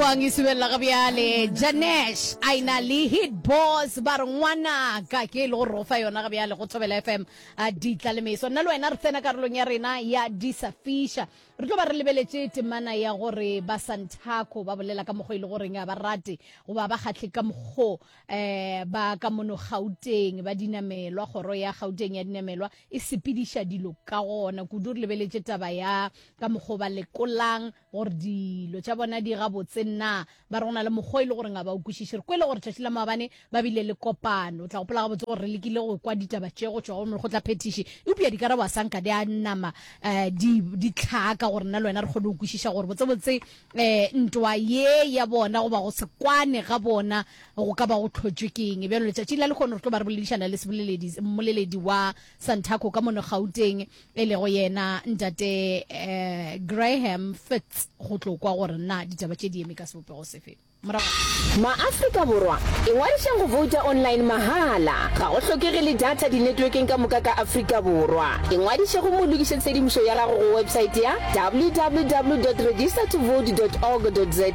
Kwang e subelela ga bjale. Janesh a e na le hit boss ba re ngwanaka ke e le go re o fa yona ga bjale go Thobela FM a ditla le meso. Nna le wena re tsena karolong ya rena ya disafiša. Re tlo ba re lebeletše temana ya gore ba Santaco ba bolela ka mokgwa e le goreng a ba rate goba ba kgahle ka mokgwa eh ba ka mono Gauteng ba dinamelwa kgoro ya Gauteng ya dinamelwa e sepediša dilo ka gona kudu re lebeletše taba ya ka mokgwa ba lekolang gore dilo tša bona di gabotse nna ba re go na le mokgwa e le gore ga ba o kwešiše re kwele gore tšatši la maabane ba bile le kopano o tla gopola gabotse gore re lekile go kwa ditaba tše go tšwa go mekgotlaphethiši eupša dikarabo a sa nka di a nama um di di tlhaka gore nna le wena re kgone go kwešiša gore botsebotse um ntwa ye ya bona goba go se kwane ga bona go ka ba go tlhotšwe ke eng bjalo letšatšing la lekgono re tlo ba re boledišana le seboleledi mmoleledi wa santaco ka mono gauteng e lego yena Ntate um Graham Fitz go tlo kwa gore na ditaba tše di eme ka sebopego sefe. Morago. Maafrika Borwa, ingwadišeng go vouta online mahala. Ga go hlokege le data dinetwekeng ka moka ka Afrika Borwa. Ingwadiše gomme o lokiše tshedimošo ya gago go websaete ya www dot register to vote dot org dot za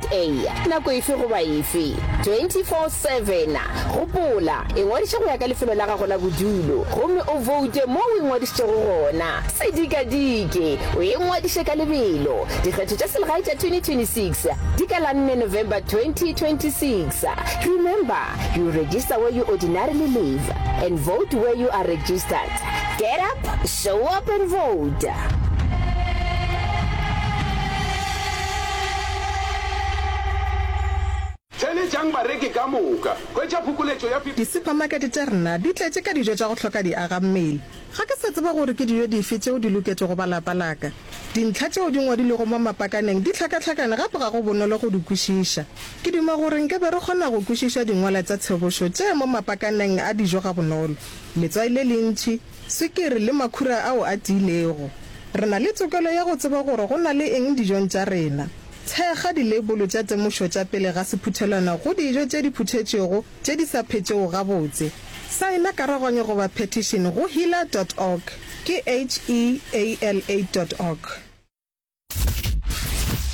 nako efe goba efe, 24 7. Gopola, ingwadiše go ya ka lefelo la gago la bodulo gomme o voute moo o ingwadišitšego gona. Se dikadike, o ingwadiše ka lebelo. Dikgetho tša selegae tša 2026 di ka la nne November 2026. Remember, you register where you ordinarily live and vote where you are registered. Get up, show up and vote! Theeletšang bareki ka moka. Hwetša phokoletšo ya 50. Disupamakete tša rena di tletše ka dijo tša go hloka diagammele. Ga ke sa tseba gore ke dijo dife tšeo di loketšego ba lapa la ka. Dintlha tšeo di ngwadilwego mo mapakaneng di hlakahlakane gape ga go bonolo go di kwešiša. Ke duma gore nke be re kgona go kwešiša dingwala tša tshobošo tše mo mapakaneng a dijo gabonolo, letswai le lentši, swikiri le makhura ao a tiilego. Re na le tokelo ya go tseba gore go na le eng dijong tša rena. Thekga dileibolo tša temošo tša pele ga sephuthelwana go dijo tše di phuthetšwego tše di sa phetšego gabotse. Saena karaganyo goba phetišene go heala dot org, ke H-E-A-L-A dot org.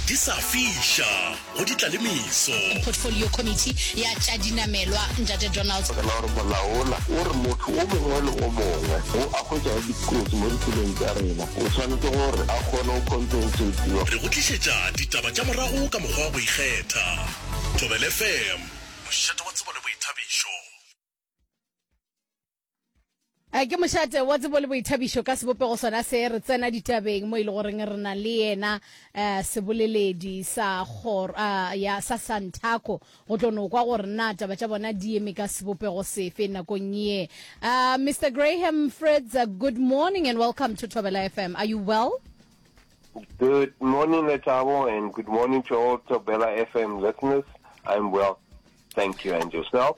Di sa fiša go di tla le meso. Portfolio Committee ya tša Dinamelwa, Ntate Donald. Fela gore molaola o re motho o mongwe le o mongwe yo a hwetšago dikotsi mo ditseleng tša rena O swanetše gore a kgone go compensatiwa. Re go tlišetša ditaba tša morago ka mokgwa wa go ikgetha. Thobela FM, mošate wa tsebo le boithabišo. A ke mošate wa tsebo le boithabišo ka sebopego sona se re tsena ditabeng mo e le goreng re na le yena eh, seboleledi sa kgoro ah, ya sa Santaco Go tlo no kwa gore na taba tša bona di eme ka sebopego sefe nakong ye. Uh, Mister Graham Fritz, uh, good morning and welcome to Thobela FM. Are you well? Good morning, Lethabo, and good morning to all Thobela FM listeners. I'm well. Thank you, and yourself?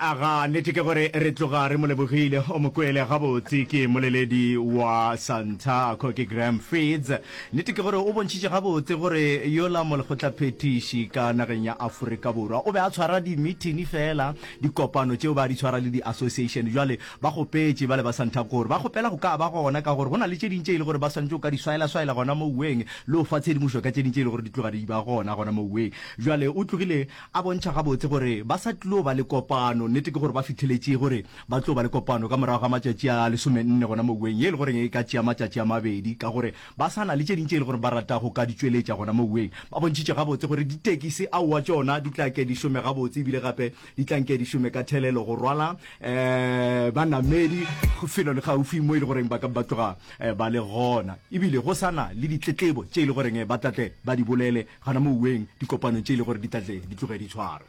Aga, nnete ke gore re tloga re mo lebogile. O mo kwele gabotse, ke mmoleledi wa Santaco, ke Graham Feeds. Nnete ke gore o bontšhitše gabotse gore yola molekgotlaphethiši ka nageng ya Aforika Borwa o be a tshwara dimithini feela, dikopano tšeo ba di tshwara le di-association. Jwale ba kgopetše bale ba Santaco gore ba kgopela go ka ba gona ka gore go na le tše ding tše e le gore ba swanetše go ka di swaela-swaela gona moweng le go fa tshedimošo ka tše ding tše e le gore di tloga di ba gona gona moweng. Jwale o tlogile A bontšha gabotse gore ba sa tlo ba le kopano. Nnete ke gore ba fitheletše gore ba tlo ba le kopano ka morago ga matšatši a lesomenne gona moweng, ye e le goreng e ka tšea matšatši a mabedi. Ka gore ba sa na le tše ding tše e le gore ba rata go ka di tšweletša gona moweng, ba bontšhitše gabotse gore ditekisi aowa tšona di tla ke di šome gabotse ebile gape di tla nke di šome ka thelelo go rwala banamedi felo le gaufi mo e le goreng ba ka ba tloga ba le gona e bile go sa na le ditletlebo tše e le goreng ba tla tle ba di bolele gona moweng dikopanong tše e le gore di tla tle di tloge di tshwarwe.